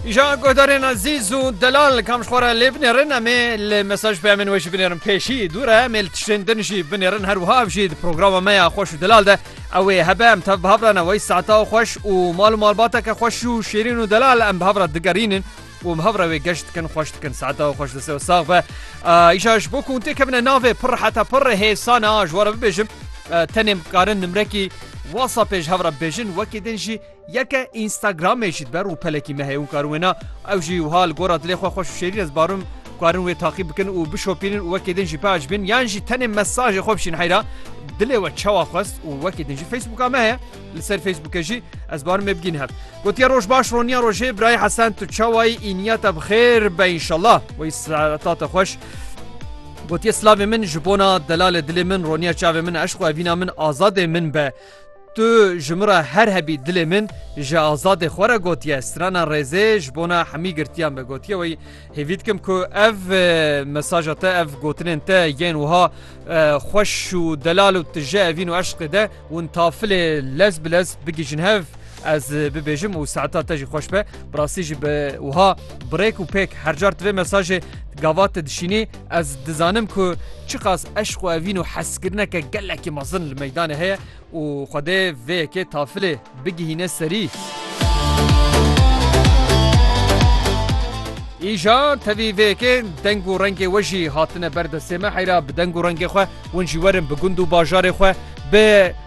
Îja guhdarên ezîz û delal kam ji xwe re lê binêrin em ê li mesaj peyamên wê jî binêrin pêşî dû re em ê li tiştên din jî binêrin her wiha ev jî di programa me ya xweş û delal de ew ê hebe em tev bi hev re newey saeta û xweş û mal û malbateke xweş û şêrîn û delal em bi hev re digerînin û hev re wê geş dikin xweş dikin saeta û xweş dise û sax be îja ji bo ku tê kevine navê pir heta pir hêsane a ji were bibêjim tenê bikarin nimrekî WhatsApp pêj hev re bêjin wekî din jî Yeke Instagramê jî dibe rûpelekî me heye hûn karin wê na ew jî wiha li gora dilê xwe xweş û şêrîn ez barim karin wê taqîb bikin û bişopînin û wekê din jî beaj bin yan jî tenê mesajê xwe bişîn heyra dilê we çawa xwest û wekê din jî Facebooka me heye li ser Facebookê jî ez barim me bigîn hev gotiye roj baş roniya rojê birayê hesen tu çawayî îniya te bi xêr be înşallah wî sereta te xweş Gotiye slavê min ji bona delalê dilê min roniya çavê min eşq evîna min azadê min be. Tu ji min re her hebî dilê min ji Azadê xwe re gotiye strana rêzê ji bona hemî girtiyan be gotiye wê hêvî dikim ku ev mesaja te ev gotinên te yên wiha xweş û delal û tije evîn û eşqê de hûn tafilê lez bi lez bigihîjin hev Ez bibêjim û saeta te jî xweş be. Bi rastî jî bi wiha birêk û pêk her car tivê mesajê gava te dişînî ez dizanim ku çiqas eşq û evîn û hezkirineke gelekî mezin li meydanê heye û xwedê vê yekê tafilê bigihîne serî. Îja tevî vê yekê deng û rengê we jî hatine ber destê me heyra bi deng û rengê xwe hûn jî werin bi gund û bajarê xwe bi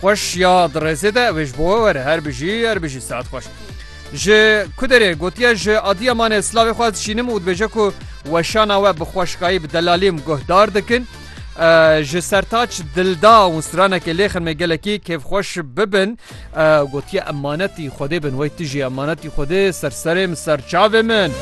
Xweş ya di rêzê de ew ê ji bo we were her bijî her bijî saet xweş. Ji Kuderê gotiye ji Adiyamanê slavê xwe dişînim û dibêje ku weşana we bi xweşikayî bi delalîm guhdar dikin. Ji Sertaç Dilda û stranekê lê xirmê gelekî kêfxweş bibin. Gotiye emanetî Xwedê bin wey tu jî emanet Ey Xwedê ser serê min ser çavê min.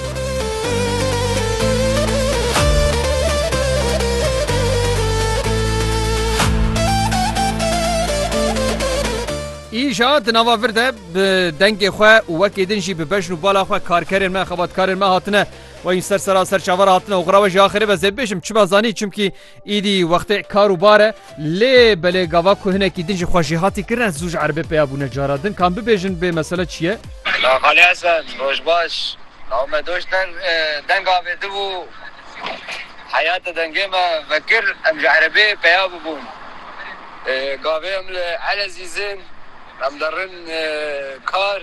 Îja di nava vir de bi dengê xwe û wekî din jî bi bejn û bala xwe karkerên me, xebatkarên me hatine. Wayîn ser sera ser çavara hatine oxira we jî axirê be zêdibêjim çima zanî çimkî Îdî wextê kar û bar e. Lê belê gava ku hinekî din jî xwe jêhatî kirine zû ji erebê peya bûne cara din. Kan bibêjin bê mesele çi ye? La Xalî Hesen, roj baş. Law me doş deng deng avêtibû. Heya te dengê me vekir em ji erebê peya bibûn. Gavê em li Elezîz in. Em derin kar.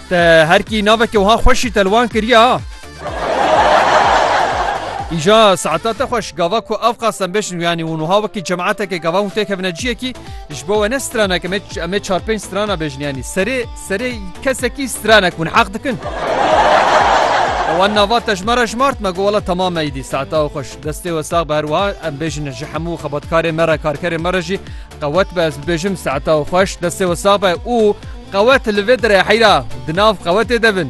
Te her kî navekê wiha xweşî te li wan kiriye ha. Îja saeta te xweş gava ku ev qasem bêjin û yanî û nuha wekî cemaeteke gavan û têkevine ciyekî ji bo we ne stranek em ê em ê çar pênc strana bêjin yanî serê serê kesekî stranek hûn heq dikin. Wan nava te ji me re jmart me got wela temam me îdî saeta xweş destê we sax be her wiha em bêjin ji hemû xebatkarê me re karkerê me re jî Qewet be ez bibêjim saeta û xweş destê we sax be û qewet li vê derê heyra di nav qewetê de bin.